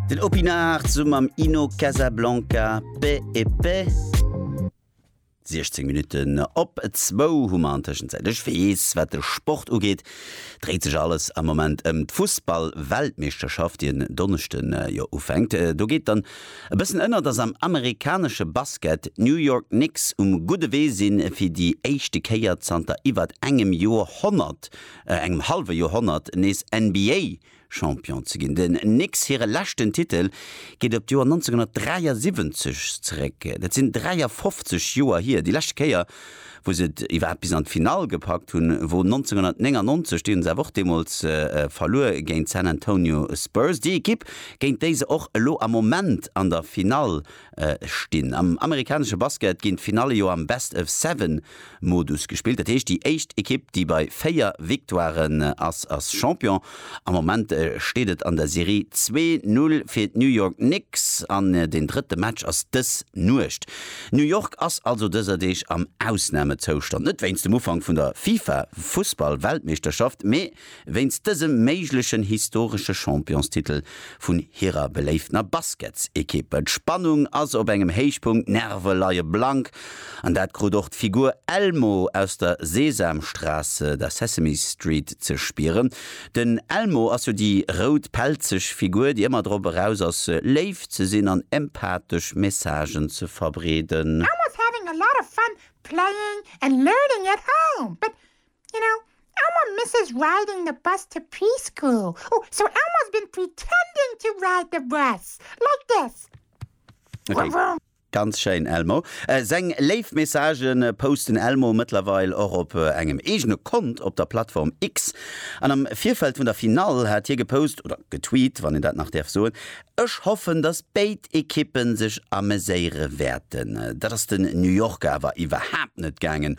Den Opinard sum am Ino Casablanca Paix et Paix. 16 Minuten op zwou hu mer an Tëschenzäit. Ech weess, wat de Sport ugeet, dréit sech alles am Moment ëm d'Fussball-Weltmeeschterschaft, déi en Donneschden jo ufänkt. Do geet dann e bëssen ënner, datt am amerikanesche Basket d'New York Knicks um gudde Wee sinn, fir déi éischte Kéier zanter iwwert engem Joerhonnert, engem hallwe Joerhonnert, nees NBA Champion ze ginn. Den Knicks hire leschten Titel geet op d'Joer 1973 zeréck. Dat sinn 53 Joer hier. Déi lescht Kéier, wou se et iwwerhaapt bis an d'Finall gepackt hunn, wor 1999. Déi hunn se awer och deemools verluer géint d'San Antonio Spurs, déi Ekipp, géint déi se och elo am Moment an der Finall stinn. Am amerikanesche Basket ginn d'Finalle jo am Best-of-Seven-Modus gespillt. Dat heescht, déi éischt Ekipp, déi bei véier Victoiren ass, ass Champion. Am Moment steet et an der Serie zwee Null fir d'New York Knicks an den drëtte Match ass dës Nuecht. New York ass also dëser Deeg am Ausnamezoustand, net wéinst dem Ufank vun der FIFA-Fussball-Weltmeeschterschaft, mee Wéinst dësem méiglechen historesche Championstitel vun hirer beléiftener Basketsekipp. D'Spannung ass op engem Héichpunkt, d'Nerve leie blank an dat krut och d'Figur Elmo aus der Sesamstraße, der Sesame Street, ze spieren. Den Elmo ass jo déi rout pelzeg Figur, déi ëmmer drop eraus ass, léif ze sinn an empathesch Messagen ze verbreeden. I was having a lot of fun playing and learning at home, but You know, Elmer misses riding the bus to preschool. Ooh, so Elmer's been pretending to ride the bus. Like this. Vroom, Okay, vroom. ganz schéin Elmo. Seng léif Messagë poust den Elmo mëttlerweil och op engem eegene Kont op der Plattform X. An am Virfeld vun der Finall hat hie gepost, oder getweet, wann een dat nach däerf soen, Ech hoffen, dass béid Ekippe sech ameséiere wäerten. Dat ass den New Yorker awer iwwerhaapt net gaangen,